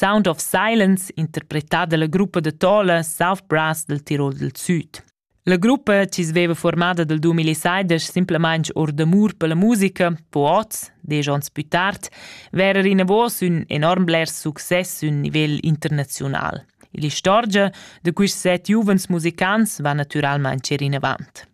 Sound of Silence, interpretà dalla gruppa da Tola South Brass dal Tirol dal Süd. La gruppa, chi sveva formada dal 2016 simplamaing or d'amur per la musica, po oz, desch ons pü tard, verer inavos ün enorm bler success ün nivel internaziunal. L'istorgia da quists set giuvens musicants va natüralmaing cer inavant.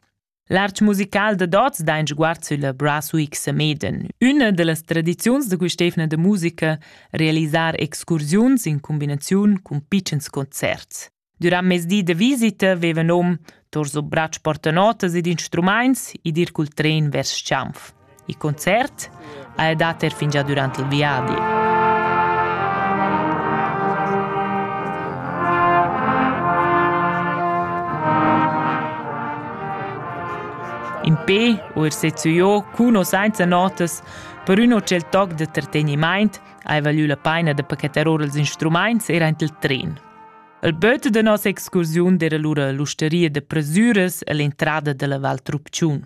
L'artg musical da Dots dain sguard sülla Brass Week Sameden, üna da las tradiziuns da quist'eivna da musica, realisar excursiuns in cumbinaziun cun pitschens concerts. Durant mes di da visita veva nom tor so brats portanotas ed instrumaints id ir cul tren vers Schanf. Il concert ha el dat er fingià dürant il viadi. In pe u er sezzüiò cun o sainza notas per ün o tschel toc da trategnimaint ha valü la paina da pachetar or ils instrumaints er aint il tren. Il böt da nossa excursiun era lura l'usteria da presüras e l'entrada dalla Val Trupciun.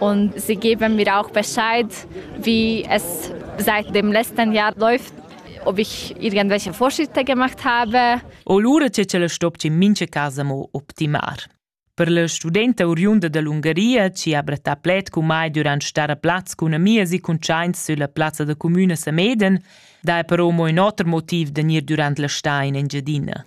und sie geben mir auch Bescheid, wie es seit dem letzten Jahr läuft ob ich irgendwelche Vorschritte gemacht habe. O lura c'è ce la stopci mince casa mo optimar. Per la studenta oriunda dall'Ungaria ci ha brattà pled con mai durant star a plaz con amia si conscienz sulla piazza da comune Sameden, dai però mo in oter motiv de nir durant la sta in Engiadina.